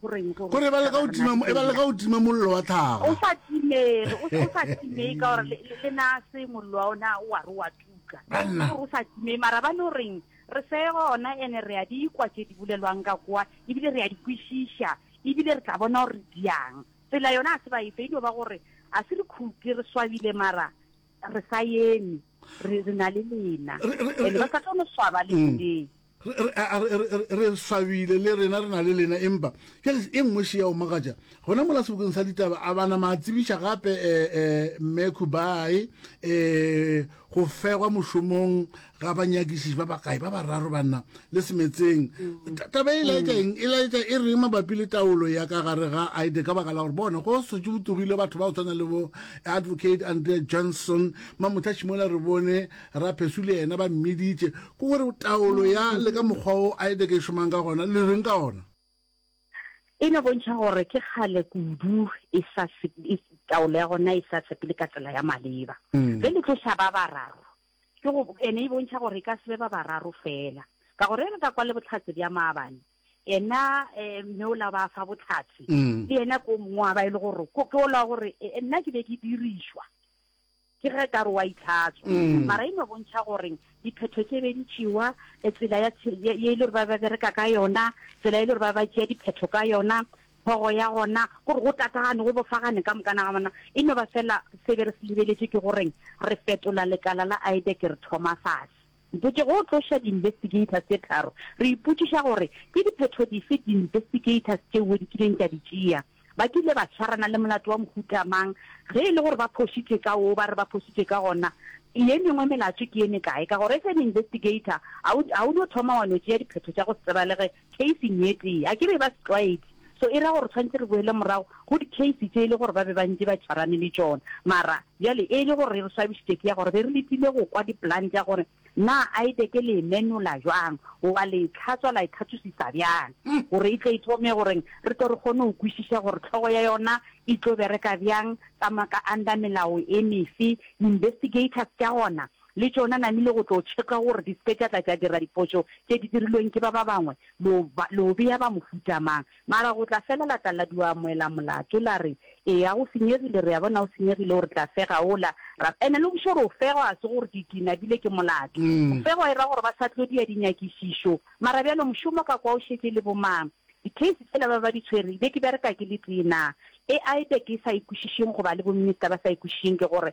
gore e ba leka go tima mollo wa tlhaga o sa timee o sa timee ka gore le na se mollo wa ona wa re wa tuka o sa timee mara ba no reng re se gona ene re ya di ikwa tse di bolelwang ka kwa ebile re ya di kwešiša ebile re tla bona gore di yang tsela yona a se ba efe e dio ba gore a se re khuke re swabile mara re sa yeme re na le lena ene ba sa tlo no swaba le mm. re swabile le rena re na le lena empa jale e nngwe še ya omagatša gona mola sebokeng sa ditaba a bana ma tsebiša gape um mme kubai um go fegwa mošomong ga banyakišiši ba bakae ba bararo banna le semetseng mm. taba e laetša mm. eng e laetša e reng mabapi le taolo ya ka gare ga ide ka baka la gore bona go setse go togile batho ba go tshwana le bo advocate andre johnson mamothašimola re bone Raphesu le yena ba mmiditše. Ke go re taolo ya le ka mokgwa wo Aideke e šomang ka gona le reng ka ona? E no bontšha gore ke kgale kudu e sa taolo ya gona e sa sepele ka tsela ya maleba. Ge le tloša ba bararo, ke go ene e bontšha gore e ka se be ba bararo fela. Ka gore ge re ka kwa le bohlatse bja maabane, ena mme ola ba fa bohlatse le yena ke o mongwe wa ba e le gore ke ola gore nna ke be ke dirišwa. Ke ge ka re wa itlhatswa. Mara e no bontšha gore diphetho tše be di tšewa, tsela ya ye e le gore ba ba bereka ka yona, tsela e le gore ba ba tšea diphetho ka yona, thogo ya gona, gore go tatagane, go bofagane ka mokana ga bona. E no ba fela se be re se lebeletše ke gore re fetola lekala la IDEC re thoma fase. Mpotše go tloša di-investigators tše tharo, re ipotšiša gore ke diphetho dife di-investigators tšeo di kileng tša di tšea. Ba kile ba swarana le molato wa mohuta mang? Ge e le gore ba phošitše ka woo ba re ba phošitše ka gona, ye mengwe melato ke ye mekae? Ka gore as an investigator, ga o no thoma wa no tšea diphetho tša go se tsebalege Keising ye tee, a ke be ba se tlwaedi, so e ra gore tshwanetse re boele morago go dikeisi tše e le gore ba be ba ntše ba tšwarane le tšona. Mara, bjale, e le gore e re swabišitše ke ya gore be re letile go kwa diplan tša gore na Aideke le e menola bjang goba le e tlhatswa la e thathusisa bjang gore e tle e thome gore re tle re kgone go kwešiša gore tlhogo ya yona e tlo bereka bjang, tsamaya ka under melao e mefe. Investigators tša gona Le tšona namile go tlo tšheka gore di se ke tša tla tša dira diphošo tše di dirilweng ke ba ba bangwe. Lo ba, lo bea ba mohuta mang? Mara go tla fela la tla la dua amoela molato, la re, Eya, go senyegile, re a bona o senyegile, o re tla fega wola. Ra, ene le bošego re o fegwa, ga se gore ke, ke nabile ke molato. Go fegwa e ra gore ba sa tlo dia dinyakišišo. Mara bjalo mošomo ka kwa o šetše le bo mang? Di-case tšela ba ba di tshwere, be ke bereka ke le tee naa? E aibe ke sa e kwešišeng goba le bo minister ba sa e kwešišeng ke gore,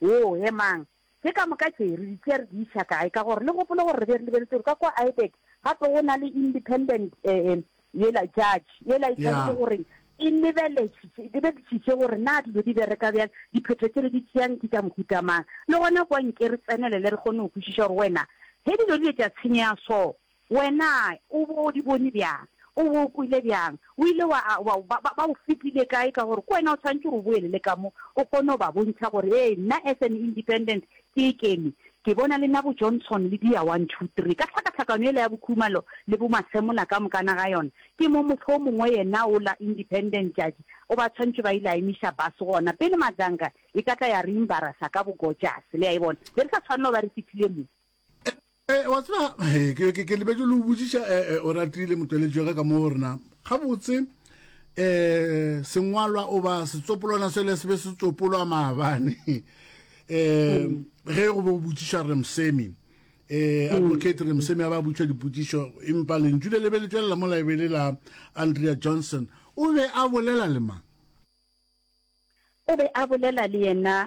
Woo, emang. Ke ka moka tše, re di tšea re di iša kae? Ka gore le gopole gore re be re lebeletse gore ka kua Aibeck gape go na le independent e, yela judge, yela e tshwanetse go reng, e lebeletše, lebeletsitše gore na dilo di bereka bjang, diphetho tše re di tšeang ke tša mohuta mang. Le gona kua nke re tsenelele re kgone go kwešiša gore wena, ge dilo di be tša tshenyega so, Wena o bo o di bone bjang? O bo o kwele bjang? O ile wa, wa, ba, ba, ba o fetile kae ka gore ke wena o tshwanetše gore o boele le ka mo o kgone go ba bontšha gore, ee, nna as an independent ke e kene. Ke bona le nna bo-Johnson le dia one, two, three. Ka tlhakatlhakano yela ya bo-Khumalo le bo-Masemola ka mokana ga yona, ke mo motho o mongwe yena ola independent tšatši o ba tshwanetše ba ile a emiša bus gona pele Madzanga e ka tla ya re embarasa ka bo-Gojase. Le a e bona? Be re sa tshwanela go ba re fihlile mo. wa tseba ke lebetse le o botsiša o ratile motweletši wa ka ka moo rena gabotse eh sengwalwa o ba setsopolwana se le se be se tsopolwa maabane eh ge go be go botsiša re msemi eh advocate re msemi a ba botša dipotsišo empa lentšu le lebe le tšwelela mo laebele la andrea johnson o be a bolela le mang o be a bolela le yena